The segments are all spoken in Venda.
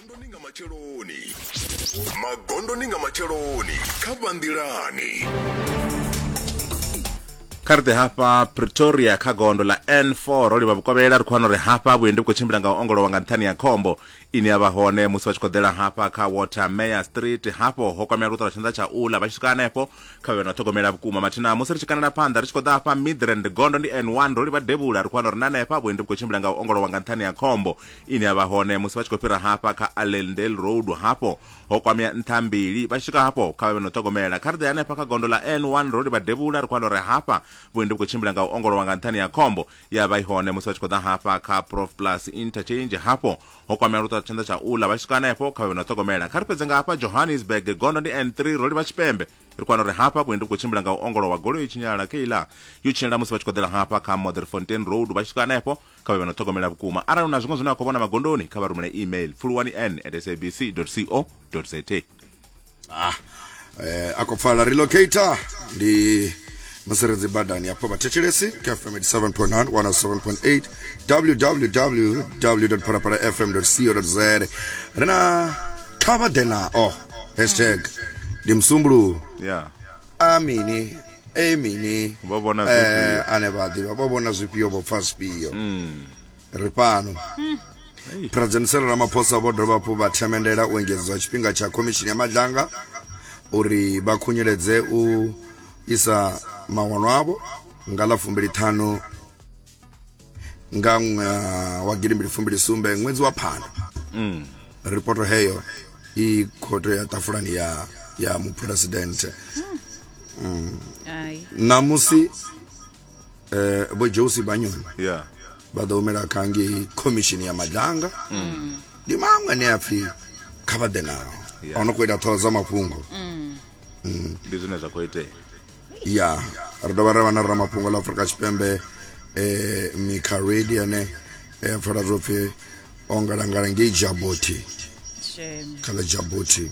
magondoni nga matsheloni magondoni nga matsheloni kha vhanḓilani kha ri ḓe hafha pretoria kha gondo ḽa n4 ro livha vhukovhela ri khou wana uri hafha vhuendi vhu khou tshimbila nga u ongolowa nga nṱhani ya khombo ine ya vha hone musi vha tshi khou ḓela hafha kha water mayor street hafho ho kwamea luṱo lwa tshanḓa tsha ula vha tshi swika hanefho kha vhe na ṱhogomela vhukuma mathina musi ri tshi kanela phanḓa ri tshi khou ḓa hafha midrand gondo ndi n one ro livha devhula ri khou wana uri na hanefha vhuendi vhu khou tshimbila nga u ongolowa nga nṱhani ya khombo ine ya vha hone musi vha tshi khou fhira hafha kha allendale road hafho ho kwamea nṱha mbili vha tshi swika hafho kha vha vhe na u ṱhogomela kha ri ḓe hanefha kha gondo ḽa n one ro livha devhula ri khou wana uri hafha vhuendi vhu khou tshimbila nga u ongolowa nga nṱhani ya khombo ya vha i hone musi vha tshi khou ḓa hafha kha prof plus interchange hafho ho kwamea luṱa tshanḓa tsha uḽa vha tshi swika hanefho kha vhe na ṱhogomela kha ri fhedze nga hafha johannesburg gondo ndi n3 ro livha tshipembe ri kwana uri hafha vhuendi vhu khou tshimbila nga u ongolowa goloi i tshinyala keiḽa yo tshinyala musi vha tshi khou ḓela hafha kha motherfontain road vha tshi swika hanefho kha vhe vha no ṱhogomela vhukuma arali hu na zwiṅwe zwine a khou vhona magondoni kha vha rumele email pfuluwani n at sabc co za ah, eh, a khou pfala relocator ndi mutsiredzi badani hafho vhathetshelesi kha fm 87.9 107.8 www phalaphala fm co za ri na kha vha ḓe nao hashtag ndi musumbuluwo yeah. a mini e mini Vho vhona zwifhio? eh, ane vha ḓivha vho vhona zwifhio vho pfa zwifhio ri fhano president Cyril Ramaphosa vho dovha hafhu vha themendela u engedzwa tshifhinga tsha khomishini ya madlanga uri vha khunyeledze u isa mawanwa avho nga ḽa fumbili ṱhanu nga ṅwaha wa gidimbili fumbili sumbe ṅwedzi wa phando mm. ripoto heyo i khoto ya tafulani ya ya muphuresidente mm. namusi eh, vho josi banyoni yeah. vha ḓo humela kha ngei khomishini ya madanga mm. ndi maṅwe ane a pfhi kha vha ḓe nao yeah. ono khou ita ṱhoho dza mafhungo mm. Mm. ndi zwine zwa khou itea ya ri dovha ra vha na ramafhungo ḽa afurika tshipembe eh, mikha redi ane eh, pfala zwo pfhi o ngalangala ngei jaboti kha ḽa jaboti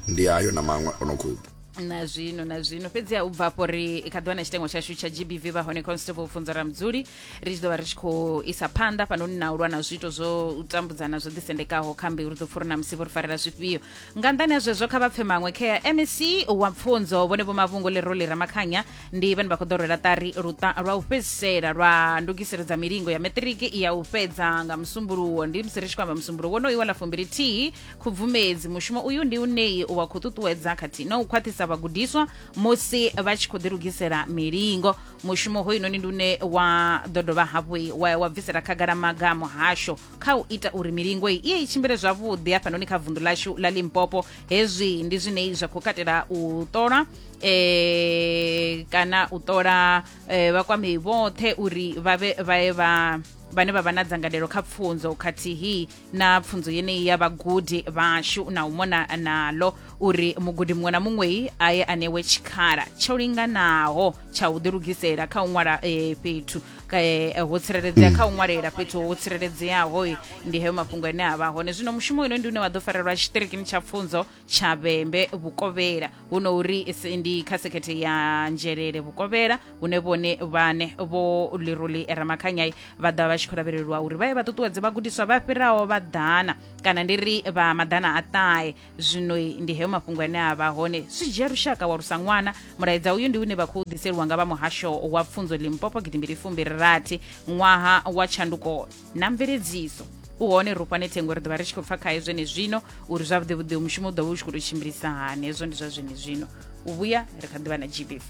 ndi ayo na maṅwe o no khou na zwino na zwino fhedziha u bva afho ri kha ḓiwana tshitengo tshashu tsha gbv vha hone constable pfunzo ra mudzuli ri tshi ḓo vha ri tshi khou isa phanḓa fhanoni na u lwa na zwiito zwo tambudzana zwo ḓisendekaho kha mbeu ri ḓo pfuri na musi vho ri farela zwifhio nga nḓani ha zwezwo kha vha pfe maṅwe kha mec wa pfunzo vhone vho mavhungo ḽi roli ramakhanya ndi vhane vha khou ḓo rwela ṱari luṱa lwa u fhedzisela lwa ndugiselo dza milingo ya maṱiriki ya u fhedza nga musumbuluwo ndi musi ri tshi khou amba musumbuluwo wonoyu wa ḽa fumbili thihi khubvumedzi mushumo uyu ndi uneyi wa khou ṱuṱuwedza khathihi na u khwaṱhisa vhagudiswa musi vha tshi khou ḓilugisela milingo mushumo hoyunoni ndi une wa ḓo dovha hafhu wa, wa bvisela khagala maga a muhasho kha u ita uri milingo iyi iye i tshimbile zwavhuḓi hafhanoni kha vundu lashu la limpopo hezwi ndi zwine zwa khou katela u ṱola eh, kana u ṱola eh, vhakwamei vhoṱhe uri vha vhe vhae vha vhane vha vha na dzangalelo kha pfunzo khathihi na pfunzo yeneyi ya vhagudi vhashu na u mona nalo uri mugudi muṅwe na muṅwei a ye a newe tshikhala tsho linganaho tsha u ḓilugisela kha u ṅwala eh, fhethu ka, eh, ho tsireledzea kha u ṅwalela fhethu ho tsireledzeaho eh, ndi heyo mafhungo ane a vha hone zwino mushumo ino ndi une wa ḓo farelwa tshitirikini tsha pfunzo tshavhembe vhukovhela huno uri ndi kha sekhethe ya nzhelele vhukovhela hune vhone vhane vho liruli ramakhanyai vha ḓa vha tshi khou lavhelelwa uri vha ye vha ṱuṱuwedze vhagudiswa vha fhiraho vha ḓana kana ndi ri vha maḓana a ṱahe zwino ndi heyo mafhungo ane a vha hone zwi dzhia lushaka wa lusa ṅwana mulaedza uyu ndi une vha khou ḓiseliwa nga vha muhasho wa pfunzo limpopo gidimbili fumbili rathi ṅwaha wa tshanduko na mveledziso u hone ri fhane thengo ri ḓovha ri tshi khou pfa khaye zwene zwino uri zwavhuḓi vhuḓi mushumo u ḓovha u tshi khou tou tshimbilisa hani hezwo ndi zwa zwene zwino u vhuya ri kha ḓivha na gbv